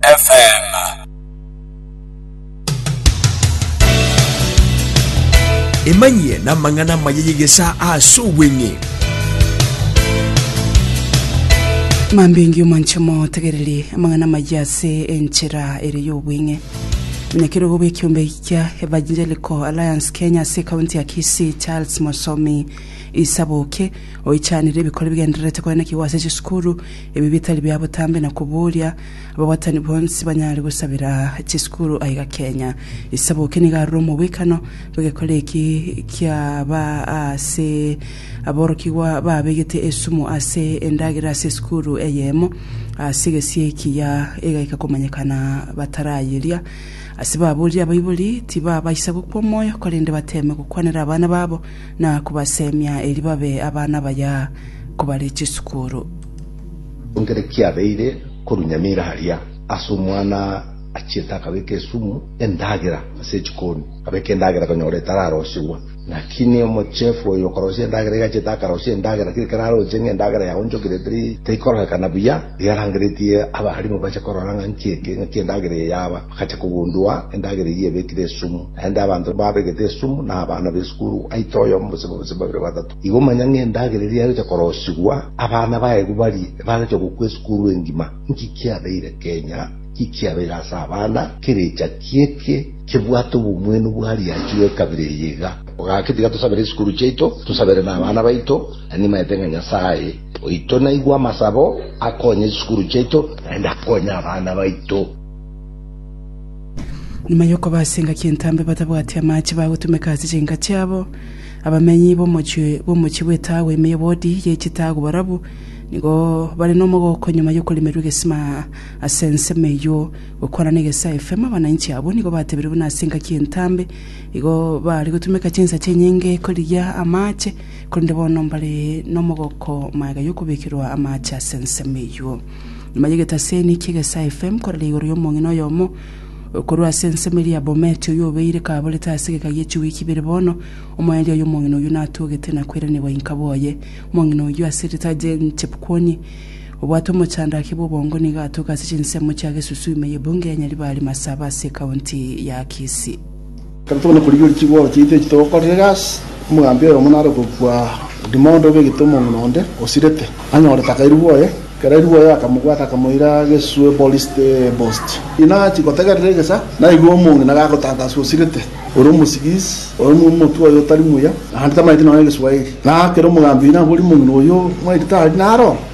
FM. Emanyie namang'ana amaya y'egesaa ase obweng'e. Mambingi omonche motegereri amang'ana amaya ase enchera ere y'obweng'e omonyakerogo bw'ekiombe ekia Evangelical Alliance Kenya ase ekaunti ya Kisii Charles Mosomi Isaboke oichanire ebikori bigendererete koenekigwa ase chisukuru Ebi bitari bia botambe na koboria, ababwatani bonsi banyare gosabera chisukuru aiga Kenya. Isaboke nigo arure omobwekano bw'egekora eki kiaba ase aborokigwa babegete esumu ase endagera ase esukuru eyemo ase egesie ekiya egaika komanyekana batarayeria. Ase baboria abaibori tibabaisa gokwa omoyo korende bateme gokwanera abana babo na kobasemia erio babe abana baya kobare chisukuru. Ekero kiabeire korwa nyamira aria, ase omwana achiete akabeka esumu endagera ase echikoni, akabeka endagera konyora etararosiwa. Naki ne omochefu oyo okorosia endagera iga achiete akarosia endagera, kera keraroche ng'a endagera yaonchokire teri, terikororekana buya. Riarangeretie abaalimu bache korora ng'a nki eke, ng'aki endagera eye yaba, bagacha kogundua endagera eyio ebekire esumu. Naende abanto babegete esumu nabana b'esukuru, aite oyomo gose babise babere batato. Igo manya ng'a endagera eria yagocha korosigwa, abana baegwe barie bagocha gokwa esukuru engima. Nki kiabeire Kenya? Nki kiabeire ase abana? Kerecha ki eke kebwate obomwenu bwa riachi bw'ekabira eye iga? Gaki tiga tosabere esukuru chiaito, tosabere nabana baito, na nimaete ng'a Nyasae, Oito naigwe amasabo, akonye chisukuru chiaito, naende akonye abana baito. Nyuma y'okoba ase engaki entambe batabwati amaache bagotumeka ase chinka chiabo, abamenyi b'omochie bw'omochie bw'etaago ime y'obodi ye chitaago barabwo nigo bare nomogooko nyuma y'okoremerwa egesima ase ensemo eyio. Gokwana n'egesa FM, abananchi abwo nigo batebire buna ase engaki entambe igo bare gotumeka chinsa chinyinge korigia amaache. korende bono mbare nomogoko magega yokobekerwa amaache ase ensemo eyio. Nyuma y'egetaseni ki'egesaa FM korera igoro y'omong'ina oyomo korwa ase ensemo eria ya Bomet oyio obeire kaborete ase egeka gie chiwiki ibere bono, omoerio oye omong'ina oyio natogete na koiranerwa inka bwoye. Omong'ina oyio ase rita Jane Chepkwony obwate omochandaki bw'obongo nigo atoka ase chinsemo chia Gesusu ime y'ebunge ya Nyaribari Masaba ase ekaunti ya Kisii. Tari tokonyara korigereria chigoro chiaito echi togokorera egasi, omogambi oyomo nare okobua odimo onde obe egete omong'ina onde osirete, anyore takairigwa oye. Ekero airigwe oye akamobwata akamoira geswe Bolisiti Bosti. Inachi gotegerera egesa, naigwe omong'ina gagotantaswa osirete, ore omosigisi, ore omotwe oye otari muya, naende tamaeti nonya egeswaeri. Na ekero omogambi oino aboria omong'ina oyio, Mwaito tari naro?